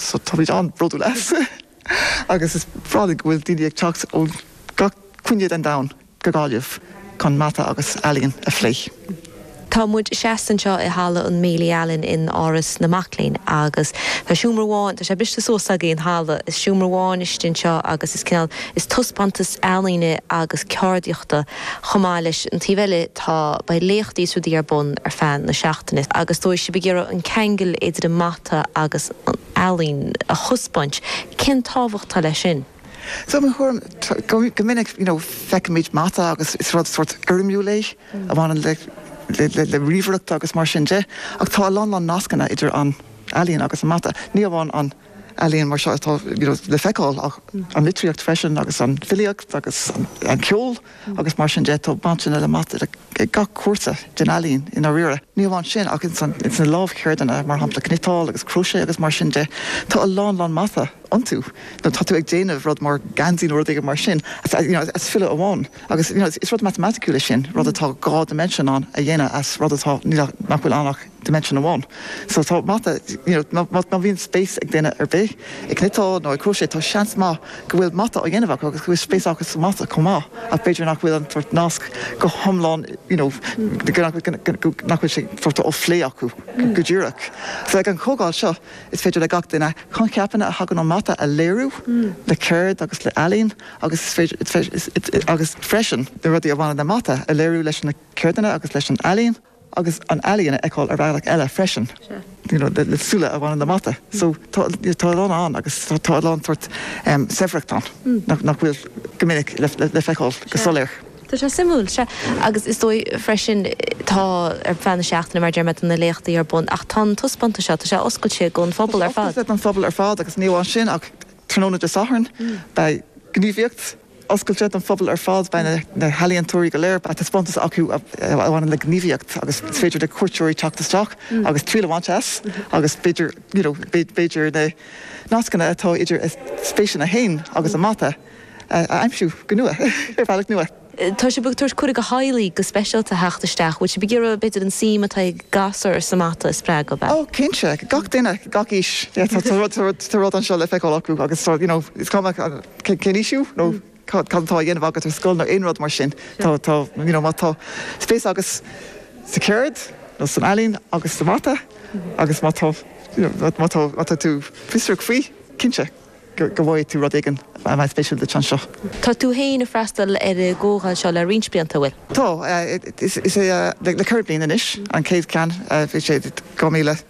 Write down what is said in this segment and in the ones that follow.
So táimid an-bhródúil as agus is breá linn go bhfuil daoine ag teacht ó gach cúinne den domhan go Gaillimh chun mata agus ealaín a phlé. Tá muid seasta anseo i halla an Bailey Allen in Áras na Mac Léinn agus tá seomra amháin, tá sé briste suas againn, an halla, is seomra amháin istigh anseo agus cineál, is taispeántas ealaíne agus ceardaíochta. Chomh maith leis an taobh eile tá, beidh léachtaí is rudaí ar bun ar feadh na seachtaine agus tá sibh ag iarraidh an ceangal idir an mata agus an ealaín a thaispeáint. Cén tábhacht atá leis sin? So i mo thuairim, go minic you know feicimid mata agus is rud sórt foirmiúil é a bhaineann le le ríomhaireacht agus mar sin de ach tá a lán, lán nascanna idir an ealaín agus an mata. Ní amháin an. ealaín mar seo atá le feiceáil ach an litríocht freisin agus an fhilíocht agus an ceol agus mar sin de. Tá baint le mata ag gach cúinne den ealaín i ndáiríre. Ní hamháin sin ach ins na lámhcheirdeanna mar shampla cniotáil agus crochet agus mar sin de tá a lán lán mata iontu má tá tú ag déanamh rud mar geansaí nó rud éigin mar sin you know as snáth amháin agus you know is rud matamaiticiúil é sin, rud atá dhá dimension ann a dhéanamh as rud atá, nach bhfuil ann ach. dimension amháin so tá mata you know má má bhíonn spéis ag duine ar bith i cniotáil nó i crochet tá seans maith go bhfuil mata á dhéanamh acu agus go bhfuil spéis acu sa mata chomh maith ach b'fhéidir nach bhfuil an sórt nasc go hiomlán you know go nach bhfuil go nach bhfuil sé sórt á phlé acu go díreach so ag an chomhdháil seo is féidir le gach duine coincheapanna a thagann ón mata a léiriú le ceird agus le ealaín agus is féidir is féidir is agus freisin na rudaí a bhaineann le mata a léiriú leis na ceirdeanna agus leis an ealaín. agus an ealaín a fheiceáil ar bhealach eile freisin you know le súile a bhaineann le mata so tá tá a lán ann agus tá a lán sórt em saibhreacht ann nach nach bhfuil go minic le le feiceáil go soiléir. Tá sé suimiúil agus is dóigh freisin tá ar feadh na seachtaine mar a deir mé tá na léachtaí ar bun ach tá an taispeántas seo tá sé oscailte don phobal ar fad. Tá sé oscailte don phobal ar fad agus ní amháin sin ach tráthnóna Dé Sathairn beidh gníomhaíocht oscailte don phobal ar fad. Beidh na healaíontóirí go léir, beidh taispeántas acu a bhaineann le gníomhaíocht agus is féidir le cuairteoirí teacht isteach agus triail a bhaint as agus b'fhéidir, you know, b'fhéidir na nascanna atá idir a spéiseanna féin agus an mata a aimsiú go nua, ar bhealach nua. Tá sibh ag tabhairt cuireadh do theaghlaigh go speisialta a theacht isteach. Bhfuil sibh ag iarraidh, b'fhéidir, an suim atá ag gasúir sa mata a spreagadh? Oh, cinnte. Gach duine, gach aois. Yeah, tá rud, tá rud anseo le feiceáil acu agus tá, you know, is cuma. cén aois thú nó cad atá á dhéanamh agat ar scoil nó aon rud mar sin. Tá, tá, you know, má tá spéis agat sa cheird nó san ealaín agus sa mata agus má tá, you know, má tá, má tá tú fiosrach faoi, cinnte go bhfaighidh tú rud éigin a bheidh spéisiúil duit anseo. Tá tú féin ag freastal ar an gcomhdháil seo le roinnt blianta, an bhfuil? Tá, is ea, le ceithre bliana anois an chéad cheann, bhí sé i 2000.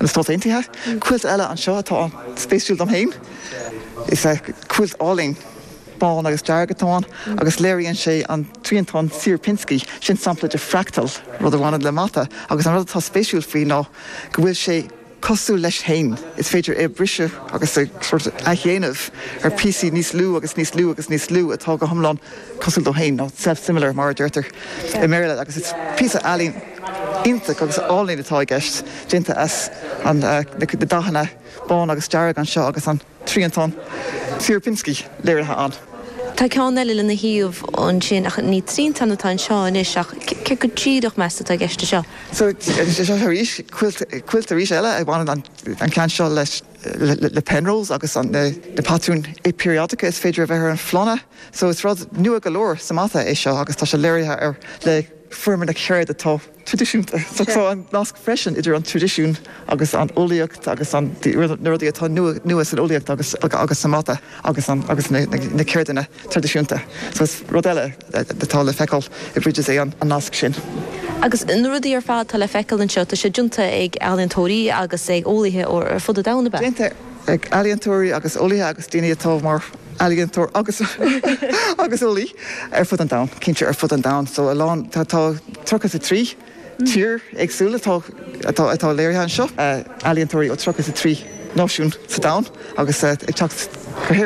Na Stáit Aontaithe. Cuilt eile anseo atá an-spéisiúil dom féin. Is ea, cuilt álainn bán agus dearg atá ann agus léiríonn sé an triantán Sierpinski. Sin sampla de fractal, rud a bhaineann le mata, agus an rud atá spéisiúil faoi ná go bhfuil sé cosúil leis féin. Is féidir é a bhriseadh agus a athdhéanamh ar píosaí níos lú agus níos lú agus níos lú atá go hiomlán cosúil dó féin, nó self-similar mar a deirtear i mBéarla, agus is píosa ealaíne. iontach agus álainn atá i gceist, déanta as na dathanna bán agus dearg anseo agus an triantán Sierpinski léirithe ann. Tá ceann eile lena thaobh ansin ach ní triantán atá anseo anois ach céard go díreach meas tú atá i gceist anseo? So, seo arís, cuilt arís eile a bhaineann an ceann seo le Penrose agus na patrúin peiriadacha is féidir a bheith ar an phlána. So is rud nua go leor sa mata é seo agus tá sé léirithe ar. foirm ar an gceird atá traidisiúnta. Tá an nasc freisin idir an traidisiún agus an eolaíocht agus na rudaí atá nua san eolaíocht agus sa mata agus na ceirdeanna traidisiúnta. So is rud eile atá le feiceáil i Bridges é an nasc sin. Agus na rudaí ar fad atá le feiceáil anseo, tá siad déanta ag ealaíontóirí agus ag eolaithe ar fud an domhain, ab ea? Déanta ag ealaíontóirí agus eolaithe agus daoine atá mar. ealaíontóir agus agus eolaí ar fud an domhain, cinnte ar fud an domhain. So a lán tá tá 33 tír éagsúil atá atá atá léirithe anseo. ealaíontóirí ó 33 náisiún sa domhan agus ag teacht go hÉirinn.